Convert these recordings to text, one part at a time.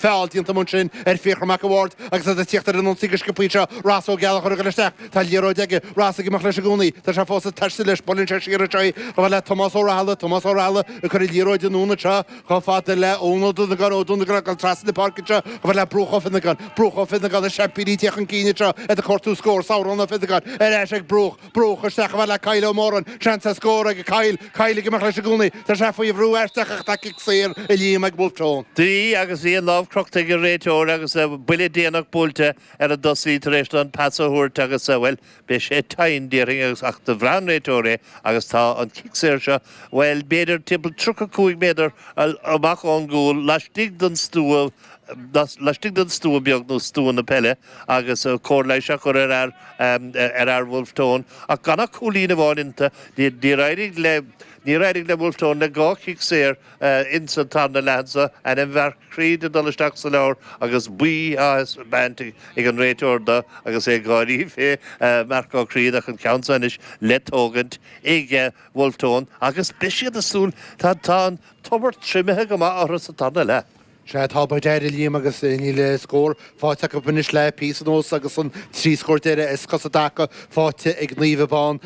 feall déanta amuigh ansin ar Fiachra Mac a' Bhaird agus iad ag tíocht ar an ionsaí go sciobtha anseo Ross Ó Gallachóir ag dul isteach. Tá liathróid aige, Ross ag imeacht leis i gcónaí. Tá sé fós ag taisteal leis, buaileann sé siar anseo é chomh fada le Tomás Ó Rathile, Tomás Ó Rathile ag cur an liathróid anonn anseo chomh fada le Eoin Ó Donnagáin, Ó Donnagáin ag dul trasna na páirce anseo chomh fada le Brughach Ó Fionnagáin, Brughach Ó Fionnagáin na seaimpíní ag teacht chun cinn anseo iad ag cuartú scóir, Sárán Ó Fionnagáin ar ais ag Brughach, Brughach isteach chomh fada le Kyle Ó Móráin, seans ar scór ag Kyle, Kyle ag imeacht leis i gcónaí, tá sé faoi bhrú aisteach ach tá cic saor a Liam ag Wolfe Tone. Bhí agus bhí an lámh crochta ag an réiteoir agus buille déanach buailte ar an dtosaí tar éis dó an pas a thabhairt agus, bhuel, bhí sé tinn, déarfainn agus, ach do bhronn an réiteoir é agus tá an cic saor seo, bhuel, b'fhéidir timpeall tríocha cúig méadar amach ón gcúl, laistigh den stua. laistigh den stua beag nó stua na peile agus cóir leighis á chur ar fhear Wolfe Tone ach gan ach cúilín amháin iontu. Níor éirigh le Níor éirigh le Wolfe Tone le dhá chic saor ins an tarna leath anso, ainm Mharc Creed ag dul isteach sa leabhar agus buí á thaispeáint ag an réiteoir dó agus é ag gáirí fé Marc Ó Críod ach an ceann so anois le tógaint ag Wolfe Tone agus beidh siad ag súil, tá an tobar triomaithe go maith orthu sa tarna leath. Sea, tá b'fhéidir a Liam agus níl scór faighte acu anois le píosa anuas agus na trí scór deiridh as cosa i dtaca faighte ag Naomh Abán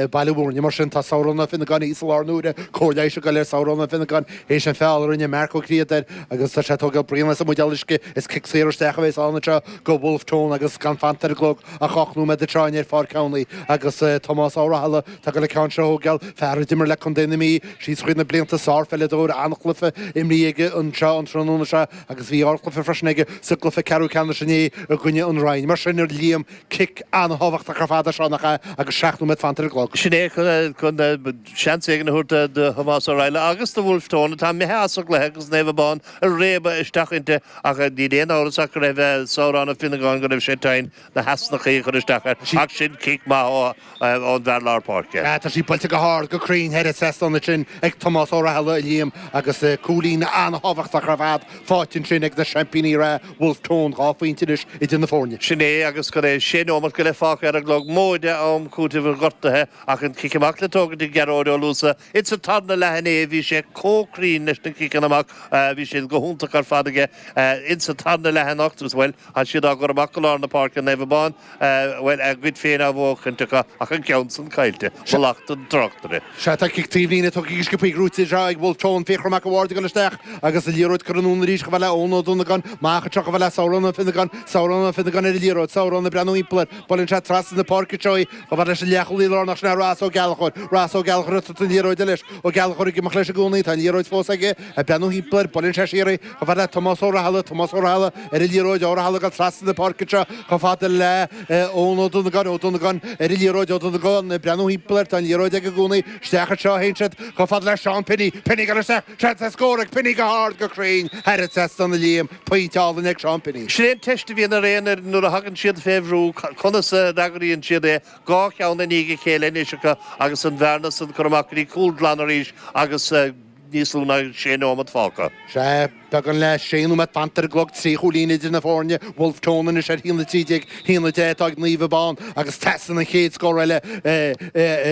Baile Bhuirne. Mar sin, tá Sárán Ó Fionnagáin thíos i láthair na huaire, cóir leighis ag dul ar Sárán Ó Fionnagáin tar éis an feall a rinne Marc Ó Críod air agus tá sé ag tógáil braon as an mbuidéal uisce is cic saor isteach a bhéas ann anseo go Wolfe Tone agus gan fanta ar an gclog ach ocht nóiméad i dtráth an dheirfáir Kearney agus Tomás Ó Rathile. atá ag goil an ceann seo a thógáil, fear a d'imir le Contae na Mí síos tríd na blianta, sárpheileadóir an-chluife imrithe aige anseo an tráthnóna seo agus bhí ardchluife freisin aige sa gcluiche ceathrú ceannais inné i gcoinne an Rinn. Mar sin a Liam, cic an-thábhachtach ar fad é seo, nach ea, agus seacht nóiméad fanta ar an gclog. Sin é, chun seans éigin a thabhairt do Thomás Ó Raghallaigh agus do Bhulf Tón atá imithe as an gcluiche agus Naomh Abán ag réabadh isteach inti ach níl aon amhras ach go raibh Sárán Ó Fionnagáin, go raibh sé tinn. na heasnachaí ag cur isteach air ach sin cic maith ón bhfear lár páirce. Tá sí buailte go hard, go cruinn thar an trasnán ansin ag Tomás Ó Rathile, a Liam, agus cúilín an-tábhachtach ar fad faighte ansin ag na seaimpíní reatha, Bhulf Tón. Dhá phointe anois idir na foirne. Sin é agus gan ach sé nóimeat go leith fágtha ar an gclog móide am cúitimh do ghortuithe ach an cic amach le tógaint ag Gearóid Ó Luasa, Ins an tarna leath inné bhí sé comh cruinn leis na ciceanna amach, bhí siad go hiontach ar fad aige ins an tarna leath anocht agus bhuel, tá siad á gcur amach go lár na páirce, Naomh Abán, bhuel a gcuid féin á bhuachaint acu ach an ceann san caillte, mallacht an tráchtaire. Sea, tá cic taobhlíne tógtha go sciobtha anseo ag Bhulf Tón, Fiachra Mac a' Bhaird ag dul isteach agus an liathróid curtha anonn arís, chomh fada le Eoin Ó Donnagáin, amach anseo, chomh fada le Sárán Ó Fionnagáin, Sárán Ó Fionnagáin ar an liathróid, Sárán ag breathnú thimpeall air, buaileann sé trasna na páirce anseo í, Chomh fada leis an leathchúlaí lárnach sin é Ross Ó Gallchóir. Ross Ó Gallchóir ag tabhairt na liathróide leis. Ó Gallchóir ag imeacht leis i gcónaí. Tá an liathróid fós aige. Ag breathnú thimpeall air, buaileann sé siar í. Chomh fada le Tomás Ó Rathaille. Tomás Ó Rathaille ar an liathróid. Ó Rathaille ag dul trasna na páirce anseo. Chomh fada le Eoin Ó Dunagáin. Ó Dunagáin ar an liathróid. Ó Dunagáin ag breathnú thimpeall air. Tá an liathróid aige i gcónaí. Isteach anseo a théann siad. Chomh fada le Seán Penny. Penny ag dul isteach. Seans le scór ag Penny go hard, go cruinn, thar an trasnán, a Liam. Pointe álainn ag Seán Penny. Sin é an teist a bhíonn ar aon fhoireann nuair a thagann siad fé bhrú, conas a fhreagraíonn siad é. Dhá cheann i ndiaidh a chéile anois acu agus an bhearna san curtha amach go dtí cúl glan arís agus níos lú ná sé nóiméad fágtha. Sea, beagán le sé nóiméad fanta ar an gclog, trí chúilín idir na foirne, Bhulf Tón anois ar a haon 13, a haon 10 atá ag Naomh Abán agus teastaíonn an chéad scór eile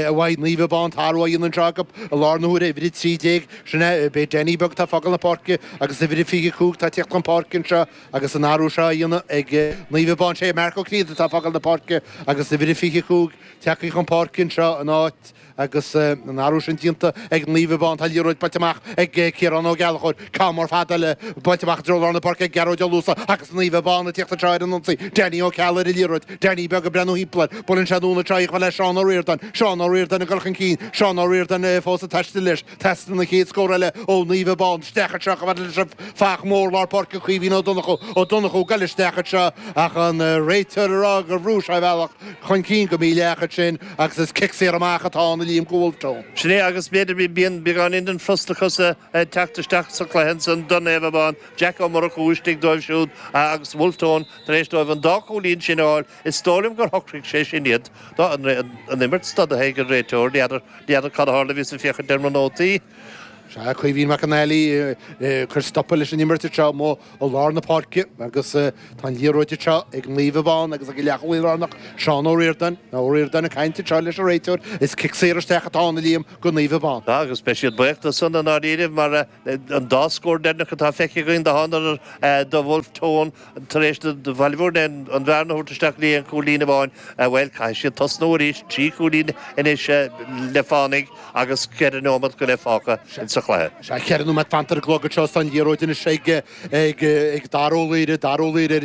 uaidh Naomh Abán. Tá athrú á dhéanamh anseo acu i láthair na huaire, uimhir 13, Sin é, b'é Danny Beag tá fágáil na páirce agus uimhir a 25 tá teacht chun páirce anseo agus an athrú seo á dhéanamh ag Naomh Abán. Sé Mark Ó Críod atá fágáil na páirce agus uimhir a 25 teacht chun páirce anseo ina áit agus an athrú sin déanta ag Naomh Abán. Tá liathróid buailte amach ag Ciarán Ó Gallchóir. Ceann mór fada eile buailte amach i dtreo lár na páirce ag Gearóid Ó Luasa agus Naomh Abán ag tíocht anseo ar an ionsaí. Danny Ó Ceallaigh ar an liathróid. Danny Beag ag breathnú thimpeall air. Buaileann sé chun tosaigh í chomh fada le Seán Ó Ríordáin. Seán Ó Ríordáin ag dul chun cinn. Seán Ó Ríordáin é fós ag taisteal leis. Teastaíonn an chéad scór eile ó Naomh Abán. Isteach anseo chomh fada leis an bhfathach mór lár páirce Caoimhín Ó Donnchú. Ó Donnchú ag dul leis isteach anseo ach an réiteoir ag rá gur bhrú sé a bhealach chun cinn go mídhleathach ansin agus is cic saor amach atá ann, a Liam, go Bhulf Tón. Sin é agus b'fhéidir beagáinín den frustrachas a. ag teacht isteach sa chluiche ansin do Naomh Abán, Jack Ó Murchú istigh dóibh siúd agus Bhulf Tón tar éis dóibh an dá chúilín sin a fháil, is dóigh liom gur shocraigh sé sin iad. Tá an imirt stadaithe ag an réiteoir, n'fheadar cad a tharla, bhíos ag féachaint ar mo nótaí. Sea, Caoimhín Mac an Fhailigh ag cur stop leis an imirt anseo. i lár na páirce agus tá an liathróid anseo ag Naomh Abán agus ag an leathchúlaí lárnach, Seán Ó Riordáin. Tá Ó Riordáin ag caint anseo leis an réiteoir. Is cic saor isteach atá ann, a Liam, go Naomh Abán. Agus beidh siad buíoch de san i ndáiríribh mar an dá scór deireanach atá feicthe againn do thánar do Bhulf Tón tar éis do Bhaile Bhúirne an bhearna a thabhairt isteach le aon chúilín amháin. Bhuel, caithfidh siad tosnú arís. Trí chúilín anois le fánaigh. Agus ceithre nóiméad go leith fágtha insa chluiche. Ceithre nóiméad fanta ar an gclog anseo is an liathróid anois ag Dara Ó Laoire, Dara Ó Laoire.